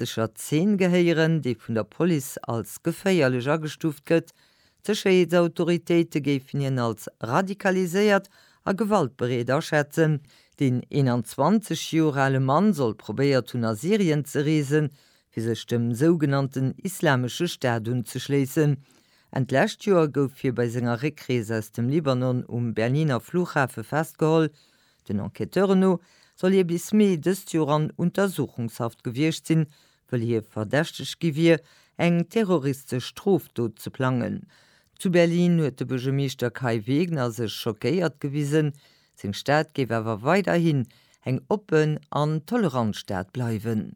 verdächteger Zeen gehéieren, dee vun der Police als geféierlech agestuuft gëtt. D'Sécherheetsautoritéite géifen hien als radikaliséiert a gewaltbereet aschätzen. Den 21 Joer ale Mann soll probéiert hunn, a Syrien ze reesen, fir sech dem sougenannten Islamesche Staat unzeschléissen. Enn d'lescht Joer gouf hie bei senger Réckrees aus dem Libanon um Berliner Flughafe festgeholl, Den Enquêteuren no soll hie bis Mee dëst Joer an Untersuchungshaft gewiescht sinn, wëll hie verdächtegt gi wier, eng terroristesch Strofdot ze plangen. Zu Berlin huet de Buergermeeschter Kai Wegner sech schockéiert gewisen. Seng Stad géif awer weiderhin eng oppen an tolerant Stad bleiwen.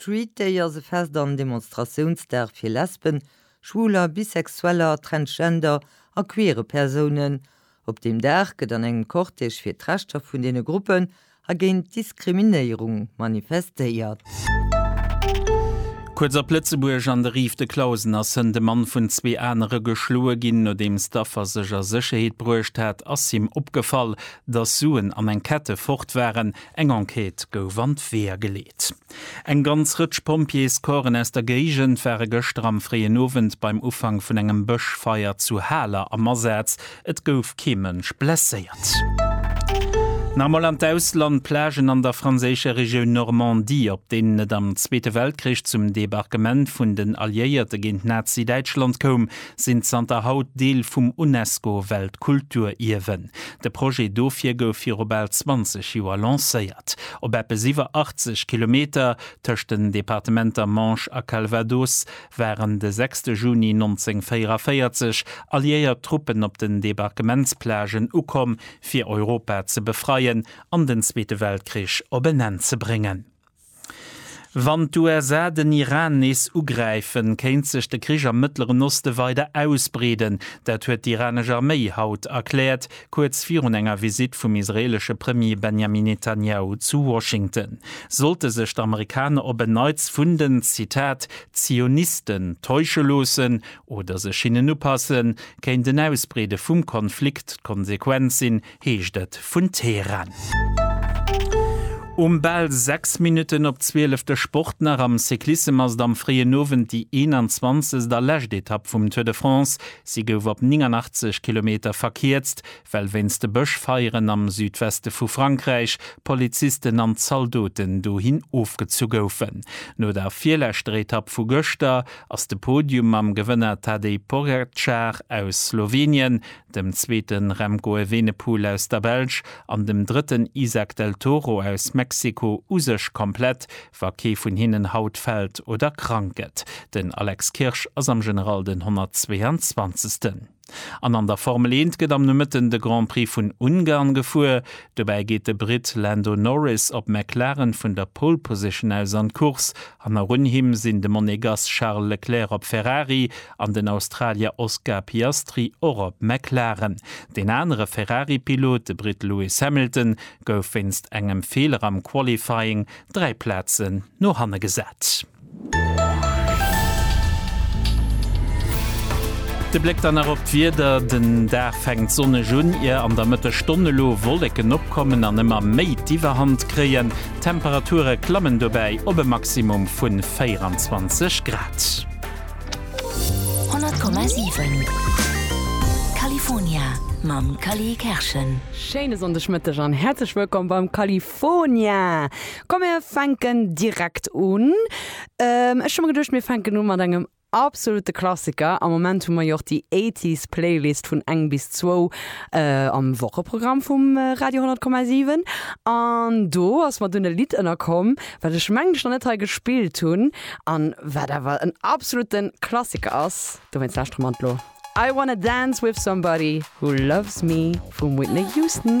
Street Day ass e Fest an Demonstratiounsdag fir Lesben, Schwuler, Bisexueller, Transgender a queere Persounen. Op deem Dag gëtt an engem Cortège fir d'Rechter vun deene Gruppen a géint d'Diskriminéierung manifestéiert. Kuerz op Lëtzebuerg, An de Rives de Clausen ass hënt e Mann vun zwee anere geschloe ginn. Nodeems d'Affer sech a Sécherheet bruecht hat, ass him opgefall, datt Suen an eng Kette fort waren. Eng Enquête gouf an d'Weeër geleet. Eng ganz Rëtsch Pompjeescorpsen aus der Géigend ware gëschter am fréien Owend beim Ufank vun engem Bëschfeier zu Haler am Asaz. Et gouf kee Mënsch blesséiert. Nach emol an d'Ausland, Plagen an der franséischer Regioun Normandie, op deenen et am Zweete Weltkrich zum Debarquement vun den Alliéierte géint Nazi-Däitschland koum, sinn zanter haut Deel vum UNESCO-Weltkulturierwen. De Projet dofir gouf viru bal 20 Joer lancéiert. Op eppes iwwer 80 Kilometer, tëscht den Departementer Manche a Calvados, waren de 6 Juni 1944 alliéiert Truppen op den Debarquementsplagen ukomm, fir Europa ze befreien an den Zweete Weltkrich op en Enn ze bréngen. Wann d'USA den Iran nees ugräifen, kéint sech de Krich am Mëttleren Oste weider ausbreeden. Dat huet d'iranesch Arméi haut erkläert, kuerz virun enger Visitt vum israeelesche Premier Benjamin Netanjahu zu Washington. Sollte sech d'Amerikaner op en Neits vun den, Zitat, Zionisten täusche loossen oder sech hinnen upassen, kéint en Ausbreede vum Konflikt d'Konsequenz sinn, heescht et vun Teheran. Um bal 6 Minutten op 12 de Sport nach, Am Cyclissem ass et am fréien Owend déi 21. a lescht Etapp vum Tour de France. Si gouf op 89 Kilometer verkierzt, well wéinst Bëschfeieren am Südweste vu Frankräich Polizisten an Zaldoten dohin ofgezu goufen. No der virleschter Etapp vu gëschter ass de Podium mam Gewënner Tadej Pogacar aus Slowenien dem zweete Remco Evenepoel aus der Belsch an dem drëtten Izack Del Toro aus Mexiko u sech komplett, wa kee vun hinnen haut fält oder krank gëtt. Den Alex Kirsch ass am General den 122. An an der Formel Eent gëtt am Nomëtten de Grand Prix vun Ungarn gefuer. Dobäi geet de Britt Lando Norris op McLaren vun der Pole Position aus an d'Course An narun him sinn de Monegass Charles Leclerc op Ferrari an den Australier Oscar Piastri och op McLaren. Deen anere Ferrari-Pilot, de Britt Lewis Hamilton, gouf wéinst engem Feeler am Qualifying dräi Plazen no hanne gesat. De Bléck dann nach op d'Wieder, Den Dag fänkt sonneg un, ier an der Mëttesstonn elo Wolleken opkommen an ëmmer méi d'Iwwerhand kréien. D'Temperature klammen dobäi op e Maximum vu 24 Grad. 100,7 California mam Cally Kerschen. Schéine Sonndegmëtteg an häerzlech wëllkomm beim California. Komm mir fänken direkt un. Ech hu mer geduecht mir fänken u mat engem Absolute Klassiker, am Moment hu mer jo och déi Eighties Playlist vun eng bis zwou am Wocheprogramm vum Radio 10,7 an do ass mer dunn e Lidd ënnerkomm wat ech mengen ech nach net hei gespillt hunn an wat awer en absolute Klassiker ass, dowéinst lauschtere mer elo I Wanna Dance With Somebody Who Loves Me vum Whitney Houston.